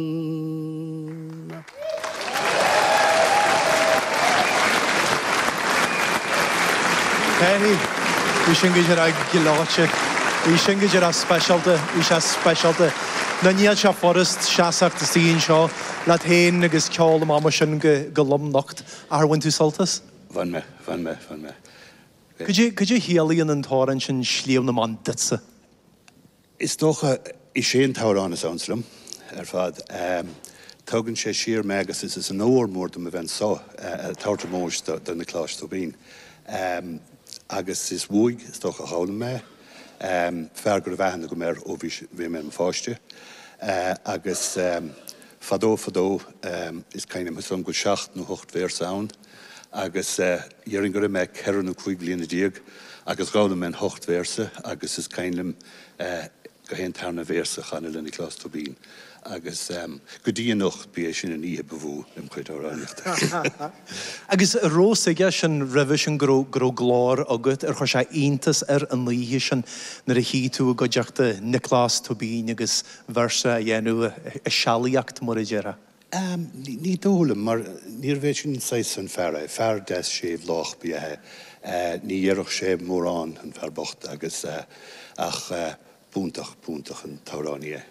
Annluain. Pé ní, bhí sin go díreach gleoite. Bhí sin go díreach speisialta. Bhí sé speisialta. Ná níl sé furast seasacht suas anseo leat féin agus ceol amach mar sin go lom nocht. Ach ar bhain tú sult as? Bhain mé. Bhain mé. Bhain mé. Cad é a chiallaíonn an t-amhrán sin Sliabh na mBan duitse? Is dócha is é an t-amhrán is ansa liom ar fad. Tugann sé siar mé agus is onóir mór dom a bheith anso, ag tabhairt ómóis do Nioclás Tóibín. Agus is uaidh, is dócha, a d'fhoghlaim mé é, fear go raibh aithne agam air ó bhí mé i mo pháiste. Agus fadó fadó is cuimhin liom go bhfuil seacht nó hocht véarsa ann. agus déarfainn go raibh mé ceithre nó cúig bliana déag agus d'fhoghlaim mé na hocht véarsa agus is cuimhin liom gach aon tarna véarsa a chanadh le Nioclás Tóibín agus go dtí anocht ba é sin an oíche ba mhó im chuid amhránaíochta. Agus an raibh a fhios aige sin roimhe sin go raibh glór agat ar chuir sé iontas air an oíche sin nuair a shuigh tú i gcuideachta Nioclás Tóibín agus véarsa a dhéanamh, i sealaíocht mar a déarfá. Ní dóigh liom, mar níorbh é sin saghas an fear é. Fear deas séimh lách ba ea é. Ní déarfadh sé mórán, an fear bocht, agus, ach b'iontach, b'iontach an t-amhránaí é.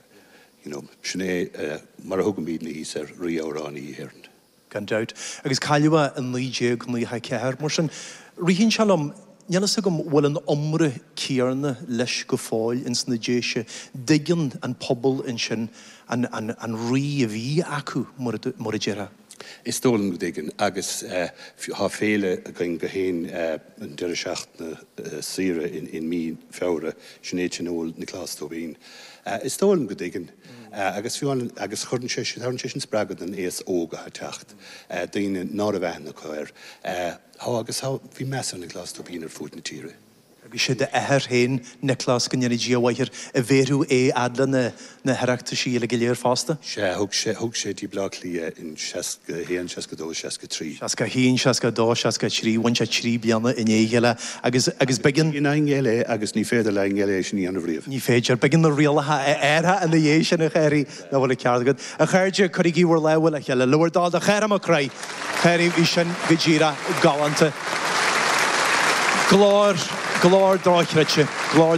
You know, sin é mar a thugaimídne thíos air, Rí Amhránaí Éireann. Gan dabht. Agus cailleadh é i naoi déag naocha a ceathair. Mar sin, ritheann sé liom, Níl fhios agam an bhfuil an iomrá céarna leis go fóill ins na Déise. An dtuigeann an pobal ansin an rí a bhí acu mar a déarfá. Is dóigh liom go dtuigeann agus tá féile againn gach aon an deireadh seachtaine saoire i mí Feabhra. Sin é Tionól Niocláis Tóibín. Is dóigh liom go dtuigeann agus fiú agus cuireann sé sin tabharann sé sin spreagadh don aos óg atá ag teacht, daoine ná raibh aithne acu air. Tá, agus tá. Bhí meas ar Nioclás Tóibín ar fuaid na tíre. Agus sé d'athair féin, Nioclás, go ndéanaidh Dia a mhaith air, a bhéarfadh é a fhad le na hOireachtaisí uile go léir fosta. Sea, thug sé, thug sé go dtí Bleá Cliath i seasca h-aon, seasca dó, seasca trí. Seasca h-aon, seasca dó, seasca trí, bhain sé trí bliana i ndiaidh a chéile agus, agus b'eigean. I ndiaidh a chéile agus ní féidir le éinne eile é sin a dhéanamh riamh. Ní féidir. B'eigean na rialacha a athrú ina dhiaidh sin a Chárthaigh. Ná fuil an ceart agat. A chairde, cuirigí bhur lámha le chéile le bhur dtoil do Chárthach Mac Craith. A Chárthaigh, bhí sin go díreach galánta. Glór, glór dochreidte, glór.